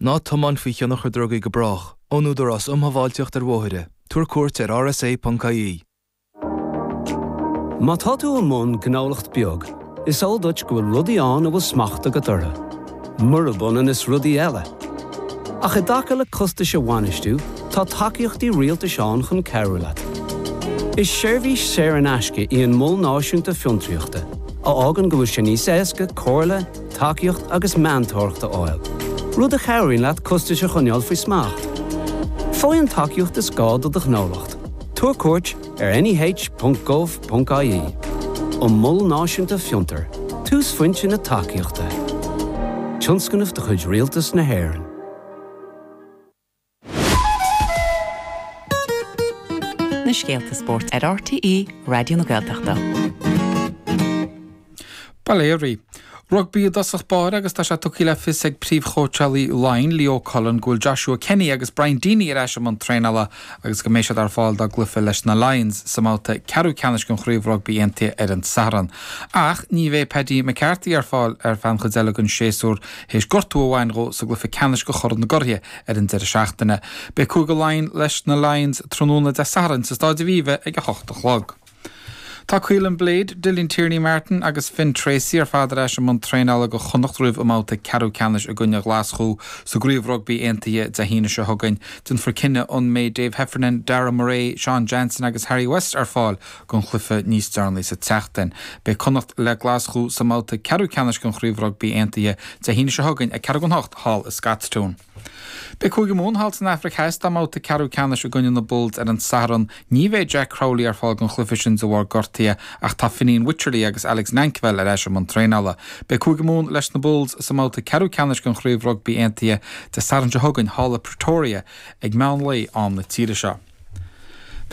Ná tiomáin faoi thionchar drugaí go brách, ón Údarás um Shábháilteacht ar Bhóithre. Tabhair cuairt ar rsa.ie. Má tá tú i mbun gnólacht beag, is eol duit go bhfuil rudaí ann a bhfuil smacht agat orthu, murab ionann is rudaí eile. Ach i dtaca le costais a bhainistiú, tá tacaíochtaí rialtais ann chun cabhrú leat. Is seirbhís saor in aisce í an Mol Náisiúnta Fiontraíochta a fhágann go bhfuil sé níos éasca comhairle, tacaíocht agus meantóireacht a fháil, rud a chabhraíonn leat costais a choinneáil faoi smacht. Faigh an tacaíocht is gá do do ghnólacht, tabhair cuairt ar neh.gov.ie An Mol Náisiúnta Fiontar, túsphointe na tacaíochta. Tionscnamh de chuid Rialtas na hÉireann. na scéalta spóirt ar RTÉ Raidió na Gaeltachta. Bail ó Dhia oraibh. Rugbaí i dtosach báire agus tá sé tugtha le fios ag príomhchóitseálaí Laighean, Leo Cullen, go bhfuil Joshua Kenny agus Brian Deeny ar ais i mbun traenála agus go mbeidh siad ar fáil dá gcluife leis na Lions sa mbabhta ceathrú ceannais den Chraobh Rugbaí Aontaithe ar an Satharn. Ach ní bheidh Paddy McCarthy ar fáil ar feadh an chuid eile den séasúr théis gortú a bhain dhó sa gcluife ceannais de Chorn na gCuraithe ar an deireadh seachtaine. Beidh Cúige Laighean leis na Lions tráthnóna Dé Sathairn sa Staid Aviva ag a hocht a chlog. Tá Caolin Blade, Dylan Tierney-Martin agus Finn Treacy ar fad ar ais i mbun traenála do Chonnacht roimh a mbabhta ceathrú ceannais i gcoinne Ghlaschú sa gCraobh Rugbaí Aontaithe Dé hAoine seo chugainn. Déanfar cinneadh an mbeidh Dave Heffernan, Darragh Murray, Sean Jansen agus Harry West ar fáil don chluife níos deireanaí sa tseachtain. Beidh Connacht le Glaschú sa mbabhta ceathrú ceannais den Chraobh Rugbaí Aontaithe Dé hAoine seo chugainn ag ceathrú don hocht thall i Scotstoun. Beidh Cúige Mumhan thall san Afraic Theas dá mbabhta ceathrú ceannais i gcoinne na Bulls ar an Satharn. Ní bheidh Jack Crowley ar fáil don chluife sin de bharr gortaithe ach tá Fineen Wycherley agus Alex Nankivell ar ais i mbun traenála. Beidh Cúige Mumhan leis na Bulls sa mbabhta ceathrú ceannais den Chraobh Rugbaí Aontaithe Dé Sathairn seo chugainn thall i Pretoria ag meán lae am na tíre seo.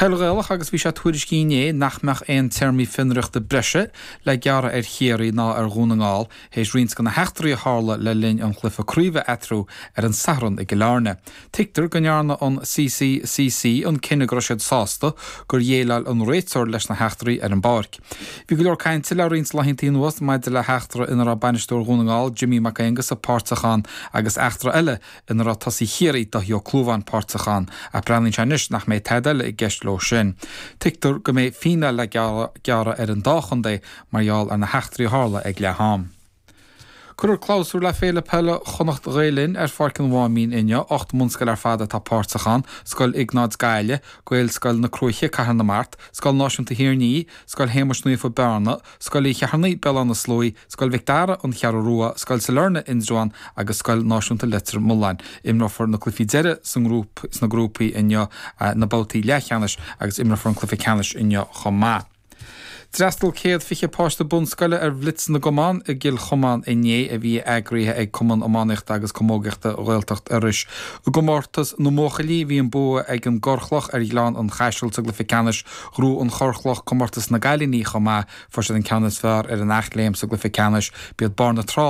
Peil Ghaelach agus bhí sé tuairiscithe inné nach mbeadh aon téarmaí fionraíochta breise le gearradh ar Chiarraí ná ar Dhún na nGall théis roinnt de na heachtraí a tharla le linn an chluife craoibhe eatarthu ar an Satharn i gCill Airne. Tuigtear go ndearna an CCCC an cinneadh go raibh siad sásta gur dhéileáil an réiteoir leis na heachtraí ar an bpáirc. Bhí go leor cainte le roinnt laethanta anuas maidir le heachtra ina raibh bainisteoir Dhún na nGall, Jimmy Mac Aonghusa páirteach ann agus eachtra eile ina raibh tosaí Chiarraí, Dáithí Ó Clúmháin, páirteach ann, ach breathnaíonn sé anois nach mbeidh tada eile i gceist leo sin. Tuigtear go mbeidh fíneáil le gearradh ar an dá chontae mar gheall ar na heachtraí a tharla ag leath-am. Cuirfear clabhsúr le Féile Peile Chonnacht Ghael Linn ar Pháirc an Mháimín inniu. Ocht mbunscoil ar fad atá páirteach ann, Scoil Iognáid Gaillimh, Gaelscoil na Cruaiche, Cathair na Mart, Scoil Náisiúnta Thír an Fhia, Scoil Shéamais Naofa, Bearna, Scoil Uí Cheithearnaigh, Béal Átha na Sluaí, Scoil Mhic Dara, An Cheathrú Rua, Scoil Sailearna, Indreabhán, agus Scoil Náisiúnta Leitir Mealláin. Imreofar na cluichí deiridh sna grúpaí inniu, na babhtaí leathcheannais, agus imreofar an cluiche ceannais inniu chomh maith. D'fhreastal céad fiche páiste bunscoile ar Bhlitz na gCumann i gCill Chomáin inné, a bhí eagraithe ag Cumann Iománaíochta agus Camógaíochta Ghaeltacht Iorrais. I gcomórtas na mbuachaillí, bhí an bua ag an gCorrchloch ar Ghleann an Chaisil sa gcluiche ceannais, Ghnóthaigh an Chorrchloch Comórtas na gCailíní chomh maith, fuair siad an ceann is fearr ar an Eachléim sa gCluiche Ceannais, b'iad Barr na Trá,